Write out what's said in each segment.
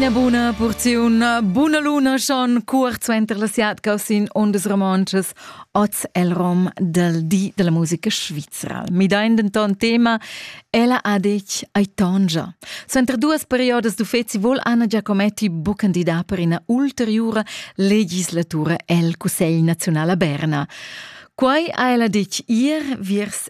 Ina buna porziun buna luna schon cuort suenter la siatga sin ondas romontschas oz el rom del di della musica svizra. Midein denton tema ella adec ai tongia. Suenter duas periodas d'uffeci vol Anna Giacometti bu candidar per ina ulteriura legislatura el Cussegl nazional a Berna. Quai ha ella detg ir viers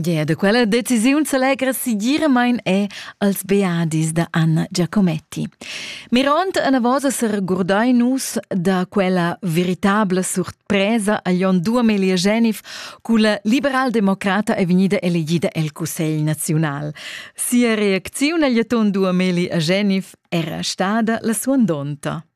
Gea, da quella decisiun s'allegra segiramain è als beadis da Anna Giacometti. Mirond anavos a regurdai nus da quella veritabla surpresa a Jon Duamelia Genif, culla liberaldemocrata è vegnida elegida el Cussegl naziunal. Sia reacziun agl Duameli a Genif era stada la suandonta.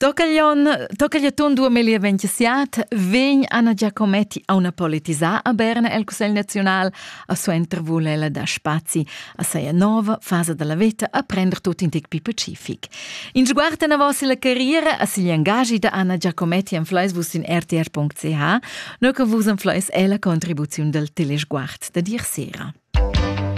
Tocaglion, tocagliaton dua melia ventissiat, vegn Anna Giacometti a una politisà a Berna el Cussegl Naziunal, a suenter vul ella dar spazi a seia nova fasa della veta a prender tut in tic pi pacific. In sguard enavos la carriera a sigl engagi da Anna Giacometti en fleis vus in rtr.ch, no che vus en fleis è la contribuziun del telesguard da dir sera.